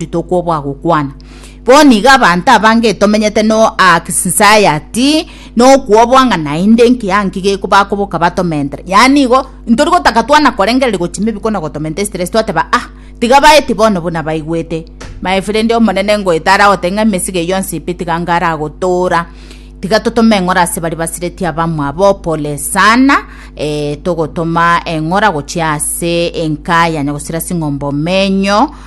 Yesu tokwo bwagokwana. Bono iga abanto abange tomenyete no anxiety nokwobwa ng'a naende nkiya nki geko bakoboka batomentere. Yaani igo ntori gotaka twana korengereria gochia maybe kona gotomentere stress twateba ah tiga baeti bono buna baigwete. My friend omonene ngoeta aragote ng'a emesigo eyio yonsi pi tiga nigo aragotora. Tiga totome eng'ora ase baria basireti abamwabo pole sana eh togotoma eng'ora gochia ase enka yane gosira sing'ombe omenyo.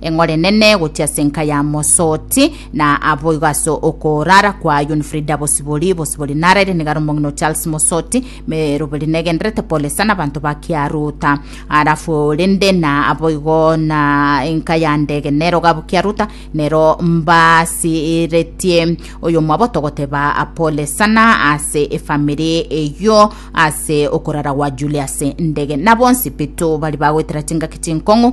Eng'ore nene gochia ase enka ya Mosoti, na aboigo ase okorara kwa Yun Frida Bosibori, Bosibori naraire nigare omong'ina o Charles Mosoti, meroberi negenderete pole sana abanto ba Kiaruta. Arafu rende na aboigo na enka ya ndege nero gabu Kiaruta, nero mbasiretie oyomwaboto goteba pole sana ase efamiri eyio ase okorara gwa Julius Ndege. Na bonsi Pitu bari bagoetera chingaki chinkong'u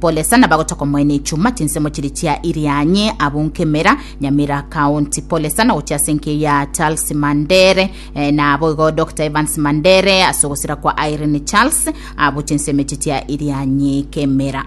Polesa na bagotaka omoene echuma chinsemo chiri chia Irianyi, Abunkemera, Nyamira County. Polesa na gochia ase enkeyo ya Charles Mandere, eh, na boigo Doctor Evans Mandere ase ogosira kwa Irene Charles, abu chinsemo echi chia Irianyi Kemera.